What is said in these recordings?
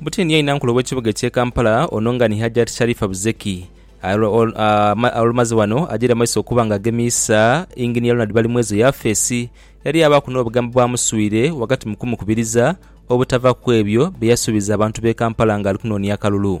Butini yaina nkulo w'ekibuga eky'e Kampala ono nga ni Hajjat Sharifah Buzeki olumaze wano ajaire maiso okuba nga agemiisa Engineer Ronald Balimwezo yafeesi eyali yaabaaku n'obugambo bwamuswire ghagati mu kumukubiriza obutava kw'ebyo bye yasuubiza abantu b'e Kampala ng'ali kunoonia akalulu.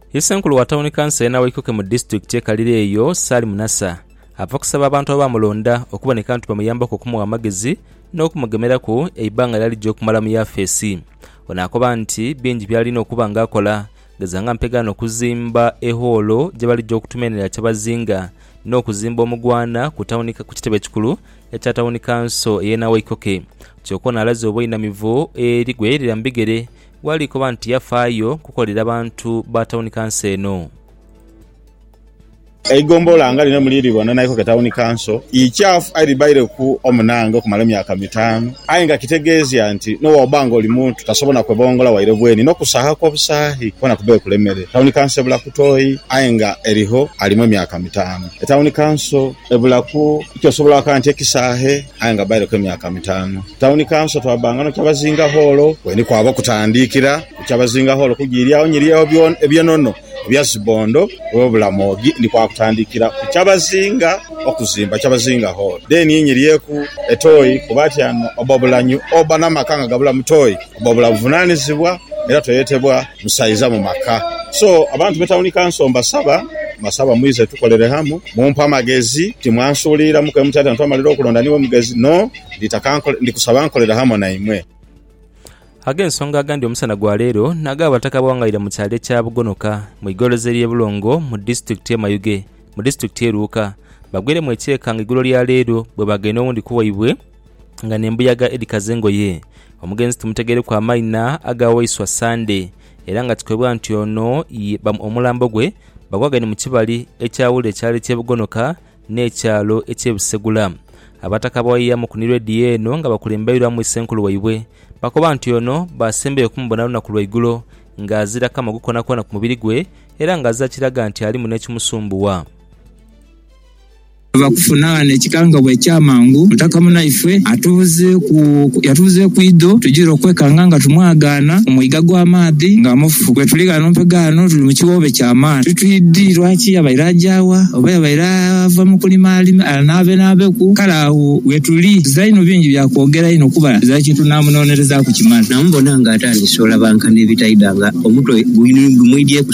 Isenkulu wa Tawuni Kanso ena waikoke mu disitulikiti ye Kalira eyo, Salim Nasser, ava kusaba abantu abaamulonda okuboneka nti bamuyambeku okumugha amagezi n'okumugemeraku eibanga ly'alija okumala mu yafeesi. Ono akoba nti bingi by'alina okuba nga akola gheza nga mpegaano okuzimba e hoolo gye balija okutuma enhilira kyabazinga n'okuzimba omugwaana ku kitebe ekikulu ekya Tawuni Kanso ey'ena waikoke. Kyoka ono alaze obweinamivu eri gwe yelira mu bigere Wali koba nti yafaayo kukolera bantu ba tawuni kanso eno? Eigombolola nga lino muli libona naikoku etawuni kanso ikyafu aye libaireku omunange okumala emyaka mitaanu aye nga kitegeezia nti n'owoba nga oli muntu tasobola na kwebongola waire bweni n'okusaaha kw'obusaahi kwona kubaire kulemere. Tawuni kanso ebula ku toyi aye nga erigho alimu emyaka mitaanu. Etawuni kanso ebulaku kyosobola okoba nti ekisaahe. aye nga baireku emyaka mitaanu. Tawuni Kanso twabbanga no Kyabazinga Hoolo we ni kwaba okutandiikira. Ku Kyabazinga Hoolo kujiiryagho nyiryagho eby'enono ebya zi bbondo we Bulamogi ni kwakutandikira ku Kyabazinga okuzimba Kyabazinga Hoolo. Then ni nyiryeku e Toi kuba atyanu obba obulanyu obba n'amaka nga gabulamu Toi obba obula buvunanizibwa era toyetebwa. Musaiza mu maka so abantu be tawuni kanso mbasaba mbasaba mwize tukolere hamu mumpe amagezi timwansuuliriramu ke muti ati na twamalira okulonda niwe mugezi no nditaka nkole ndi kusaba nkolere hamu naimwe. Ag'ensonga agandi omusana gwa leero n'ag'Abataka abawangaire mu kyalo ekya Bugonoka mu igoroza ery'e Bulongo mu disitulikiti y'e Mayuge mu disitulikiti y'e Luuka bagwiremu ekyeeka nga igulo lya leero bwebaagaine owundi ku waibwe nga n'embuyaga edhikaza engoye. Omugenzi timutegeireku amaina aga waiswa Sande era nga kikoibwa nti ono ye omulambo gwe bagwagaine mu kibali ekyawula ekyalo eky'e Bugonoka n'ekyalo eky'e Busegula. Abataka abawayiya mu kunirwa ediya eno nga bakulembeirwamu Isenkulu waibwe bakoba nti ono baasembayo okumubona lunaku lwaigulo nga azira kamogo koonakoona ku mubiri gwe era nga azira kiraga nti alimu n'ekimusumbuwa. Ava kufuna ghano ekikangabwa eky'amangu, Mutaka Munaife atubuzeeku yatubuzeeku idho tujire okwekanga nga tumwagaana ku mwiga gwa maadhi nga mufu. Bwetuli ghano mpegho ghano tuli mu kiwoobe kya maani. Titwidhi lwaki yabaire aja wa oba yabaire ava mu kulima anaabenaabeku. Kale agho wetuli tuza inho bingi bya kwogera inho kuba tuza kye tunaamunoonerezaaku kimala. Namubona ng'atandise olabanka n'ebitaidha nga omutwe gumwidhieku.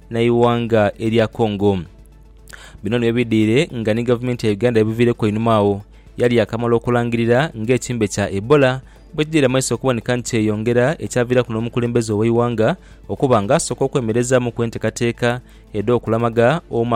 n'eighanga erya Congo. Bino nibyo bidhire nga ni gavumenti ya Uganda ebiviireku einhuma agho yali yaakamala okulangirira ng'ekimbe kya Ebola bwe kidhira mu maiso okuboneka nti kyeyongera ekyaviiraku n'omukulembeze ow'eighanga okuba nga asooka okwemerezaamuku enteekateeka edh'okulamaga omu